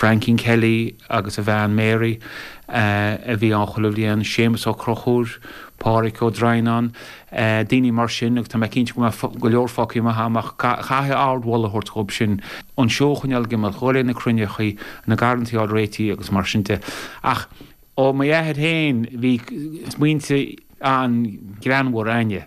Francie Kelly agus a bhean Mary a bhí ann chuile bhliain, Séamus Ó Crochúir, Páraic Ó Droighneán, daoine mar sin agus tá mé cinnte go mbeadh go leor fágtha amach agam ach caithfidh ard mholadh a thabhairt dhóibh sin, an seó a choinneáil ag imeacht, ag dul ag na cruinneachaí, na garrantaí á réití agus mar sin de. Ach ó mo thaobh féin bhí smaointe an-ghreannmhar againne.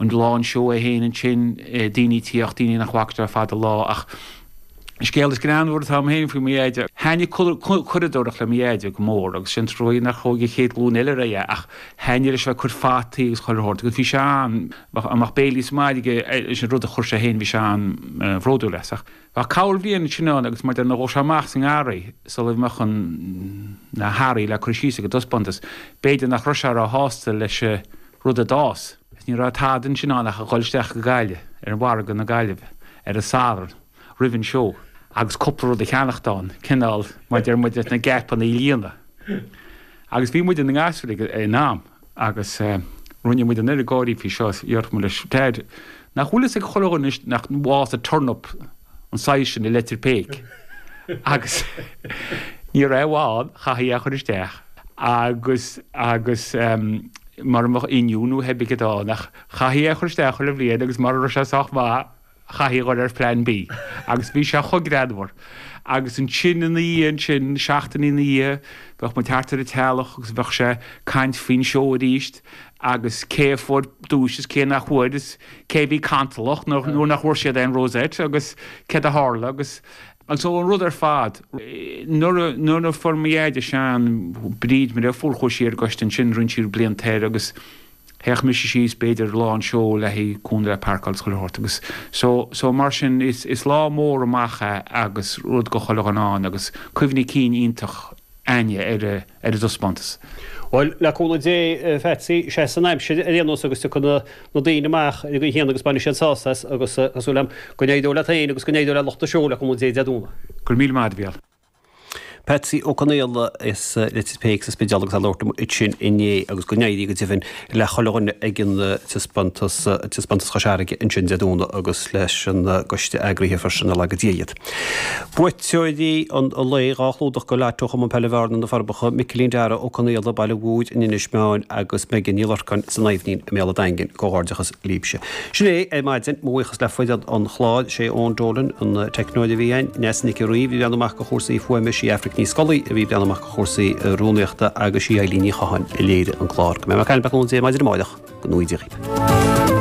an lá an seó é fhéin ansin, daoine ag tíocht daoine nach bhfactar le fada an lá ach an scéal is greannmhaire atá agam fhéin faoi mo dheaide, thaitnigh curadóireacht le mo dheaide go mór agus sé an trua nach ndeachaigh an chéad ghlúin eile ar aghaidh é ach thaitnigh leis a bheith ag cur fataí agus chuile shórt agus bhí sé an, bheadh béilí sa mbaile aige leis an rud a chuir sé fhéin bhí sé an-bhródúil as ach. Bheadh corrbhliain ansin ann agus má dhóirigh nó dul sé amach sa ngarraí sula mbeadh na hearraí le cur síos ag an dtaispeántas, b'fhéidir nach raibh sé ró-shásta leis an rud a d'fhás. Agus ní raibh tada ansin ann ach a dhul isteach go Gaillimh, ar mhargadh na Gaillimhe, ar an Satharn roimh an seó agus cúpla rud a cheannacht ann, cineál, maide na geapanna a líonadh. Agus bhí muid, inár ngasúir, ag an am, agus rinne muid an oiread gáirí faoi seo is déarfadh muid leis. Dad, nach bhfuil fhios ag chuile dhuine anois nach bhfásadh turnap an saghas sin i Leitir Péic? Agus ní raibh aon bhaol, chaithfí é a chur isteach. Agus, agus, mura mbeadh oinniún Thuaibic a bheadh ann, ach chaithfí é a chur isteach chuile bhliain agus mura raibh sé sách maith, Chaithfí a dhul ar Phlean B agus bhí sé chomh greannmhar. Agus ansin ina dhiaidh sin, seachtainí ina dhiaidh, bheadh muid thart ar an teallach agus bheadh sé caint faoin seó arís agus cé a fuair duais is cé nach bhfuair is cé a bhí cantalach nuair nach bhfuair siad aon rosette agus céard a tharla agus an rud ar fad. Nuair a, fuair mo dheaide Seán, Bríd, Máire, fuair chuaigh sí ar an gcoiste ansin, rinne sí blianta air agus. Théadh mise síos b'fhéidir lá an seó le haghaidh cúnamh le páirceáil is chuile shórt agus so, so mar sin is lá mór amach é agus rud go chuile dhuine ann agus cuimhní cinn iontach againne ar an, ar an dtaispeántas. Bhuel, le cúnamh Dé a Phatsy, seasfaidh an aimsir ar aon nós agus tiocfaidh na, na daoine amach ar an gcaoi chéanna agus bainfidh siad sásamh as agus tá súil agam go n-éireoidh leat féin agus go n-éireoidh le lucht an seó le cúnamh Dé Dé Domhnaigh. Go raibh míle maith agat, a Mhichíl. Patsy Ó Conaola as Leitir Péic sa Spidéal agus é ag labhairt liom ansin inné agus go n-éirí go deimhin le chuile dhuine ag an taispeántas Chois Fharraige ansin Dé Domhnaigh agus leis an gcoiste eagraithe freisin, nár laga Dia iad. Buaiteoirí an lae, dhá chlúdach go leith ó Chumann Peile Bhearna, Na Forbacha, Micilín Darragh Ó Conaola, Baile an Dúna, Inis Meáin agus Megan Ní Lorcáin, san Aibhnín i mBéal an Daingin. Comhghairdeachas. Libse. Sin é ar maidin, mo bhuíochas le foireann an chláir, sé Eoin Dolan an teicneoir a bhí againn, Neasa Nic an Rí a bhreathnaigh amach go chúrsaí fuaime, sí Aifric Ní Scolaí a bhreathnaigh amach go chúrsaí rúnaíochta agus sí Eilín Ní Chatháin a léirigh an clár. Go mbeidh muid ag caint libh arís maidin amáireach, go n-éirí libh.